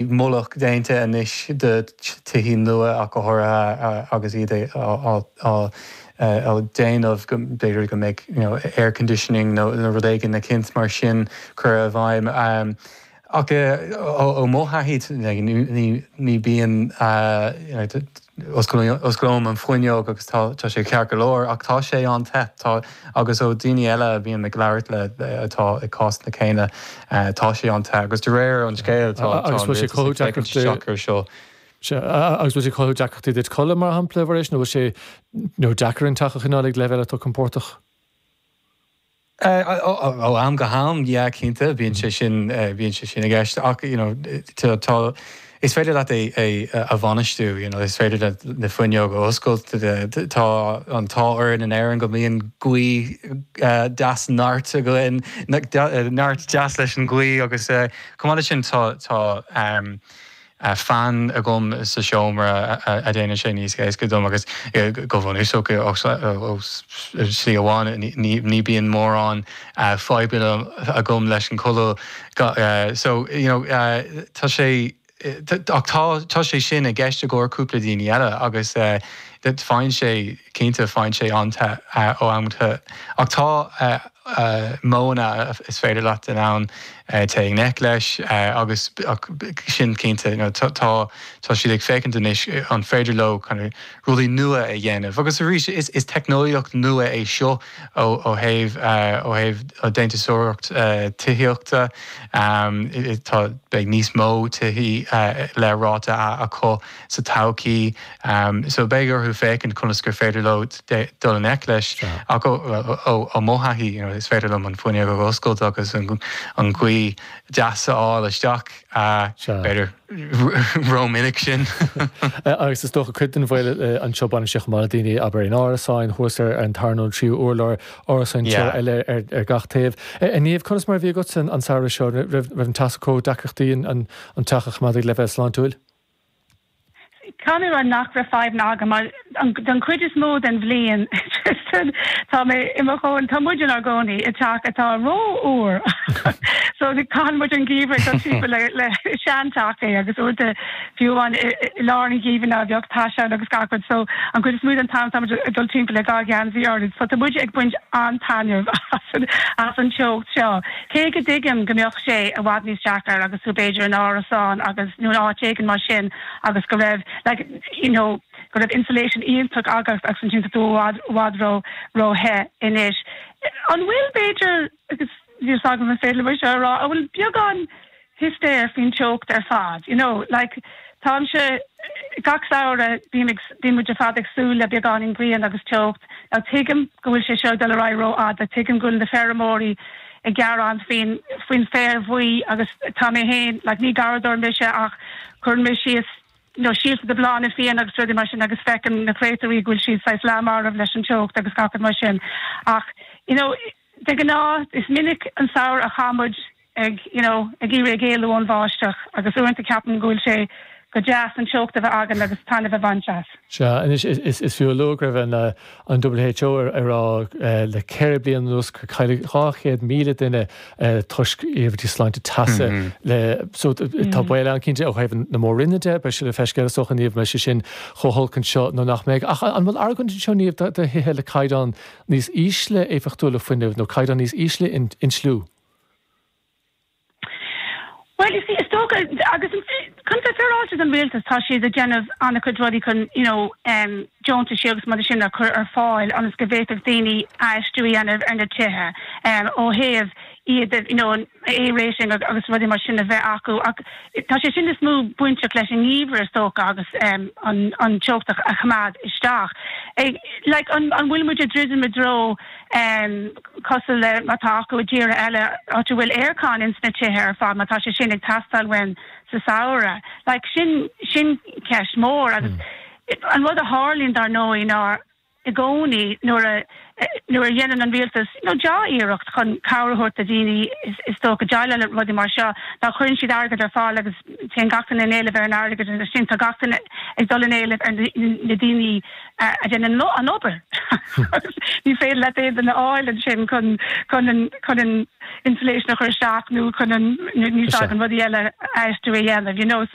Bhí moladh déanta anois de tithe nua ach go háirithe agus iad á déanamh b'fhéidir go mbeidh an air conditioning nó rud éigin eicínt mar sin curtha i bhfeidhm ach ó mo thaithí ní bhíonn Osclaím an fuinneog agus tá sé ceart go leor ach tá sé an-te. Tá, agus ó dhaoine eile a bhím ag labhairt le atá i gcásanna céanna, tá sé an-te agus de réir an scéil tá an Rialtas ag féachaint isteach ar seo. Agus bhfuil sé ag cothú deacrachtaí duit codladh mar shampla, Mhuiris, nó bhfuil sé deacair an teach a choinneáil ag leibhéal atá compordach? Ó am go ham, yeah, cinnte, bíonn sé sin, bíonn sé sin i gceist ach, you know, tá, tá, is féidir leat é, é a bhainistiú, you know, is féidir leat na fuinneoga a oscailt, tá an t-ádh orainn in Éirinn go mbíonn gaoth deas neart againn, neart deas leis an ghaoth agus chomh maith leis sin tá, tá, fan agam sa seomra a dhéanann sé níos éasca dom agus go bhunúsach oscail an fhuinneog amháin ní bíonn mórán fadhbanna agam leis an codladh so you know tá sé ach tá sé sin i gceist i gcomhair cúpla daoine eile agus faigheann sé Cinnte, faigheann sé an-te ó am go ham ach tá modhanna is féidir leat in ann téigh i ngleic leis agus ach sin cinnte you know tá tá siad ag féachaint anois an féidir leo kind of rudaí nua a dhéanamh agus arís is is teicneolaíocht nua é seo ó ó thaobh ó thaobh déantúsóireacht tithíochta tá beidh níos mó tithí le ráta A sa todhchaí so beidh orthu féachaint conas gur féidir leo dul i ngleic leis ach ó mo thaithí is féidir liom an fuinneog a oscailt agus an ghaoth deas a fháil isteach b'fhéidir rómhinic sin agus is dócha cuid den bhfadhb anseo baineann sé chomh maith le daoine abair in árasáin thuas ar an tarna nó an tríú urlár árasáinsa eile ar gach taobh a Niamh conas mar a bhí agat an samhradh seo raibh an teas ag cothú deacrachtaí an teach a choimeád ag leibhéal sláintiúil Caithfidh mé a rá nach raibh fadhb agam mar don chuid is mó den bhliain, tuigeann tú, tá mé i mo chónaí, tá muid inár gcónaí i dteach atá ró-fhuar so caitheann muid an geimhreadh ag dul timpeall le, le, seanteach é agus uaireanta fiú amháin i lár an gheimhridh bheadh tais ann agus gach rud so an chuid is mó den am tá muid ag dul timpeall le dhá gheansaí orainn so tá muid ag baint an-taitneamh as an, as an teocht seo. Cé go dtuigim go mbeadh sé i bhfad níos deacra agus tú b'fhéidir in árasán agus, nó in áit éigin mar sin agus go raibh like, you know, go raibh insulation iontach agat agus ansin tá tú i bhfad, i bhfad ró, ró the anois. An bhfuil b'fhéidir, agus níl 's agam an féidir liom é seo a rá, an bhfuil beagán, histéire faoin teocht ar fad, you know like táimse, gach samhradh bím ag, bíonn muid ar fad ag súil le beagáinín grian agus teocht, now tuigim go bhfuil sé seo ag dul ar aghaidh rófhada, tuigim go bhfuil na feirmeoirí ag gearán faoin, faoin féar bhuí agus tá mé féin, like ní garraíodóir mise ach cuireann mé síos you know síolta de bhláthanna fiáine agus rudaí mar sin agus feicim na créatúirí go bhfuil siad saghas leath marbh leis an teocht agus gach rud mar sin ach you know, De ghnáth, is minic an samhradh a chaith muid ag, you know, ag iarraidh éalú ón bháisteach agus uaireanta ceapaim go bhfuil sé go deas an teocht a bheith againn agus taitneamh a bhaint as. Sea, anois, is fiú a lua go raibh an WHO ag rá le ceithre bliana anuas gur cailleadh 200,000 duine toisc iarmhairtí sláinte teasa le, so, tá baol ann cinnte ó thaobh na Mór-roinne de, beidh sé le feiscint is dócha, Niamh, an mbeidh sé sin chomh holc anseo nó nach mbeidh. Ach an bhfuil argóint anseo, Niamh, do thithe le caighdeán níos ísle éifeachtúla fuinnimh nó caighdeán níos ísle insliú. Bhuel, you see, is dócha, agus chun a bheith féaráilte don rialtas, tá siad ag déanamh an-chuid rudaí chun, you know, deontaisí agus mar sin a chur ar fáil ionas go bhféadfadh daoine athfheistiú a dhéanamh ar na tithe ó thaobh, iad a you know an A rating agus rudaí mar sin a bheith acu ach tá sé sin is mó bainteach leis an ngeimhreadh is dócha agus em an an teocht a choimeád isteach. Ag like an an bhfuil muid ag druidim i dtreo em cosúil le mar tá acu i dtíortha eile áit a bhfuil aircon ins na tithe ar fad mar tá sé sin ag teastáil uainn sa samhradh. Like sin sin ceist mór agus an rud a tharlaíonn dar ndóigh ná i gcónaí nuair a nuair a dhéanann an Rialtas dea-iarracht chun cabhair a thabhairt do dhaoine is is dócha déileáil le rudaí mar seo ná cuireann siad airgead ar fáil agus téann gach duine in éileamh ar an airgead agus ansin tá gach duine ag dul in éileamh ar na daoine a dhéanann an obair agus ní féidir le aon duine a fháil ansin chun chun an chun an insulation a chur isteach nó chun an ní ní Is ea. fágann rudaí eile a fheistiú a dhéanamh you know.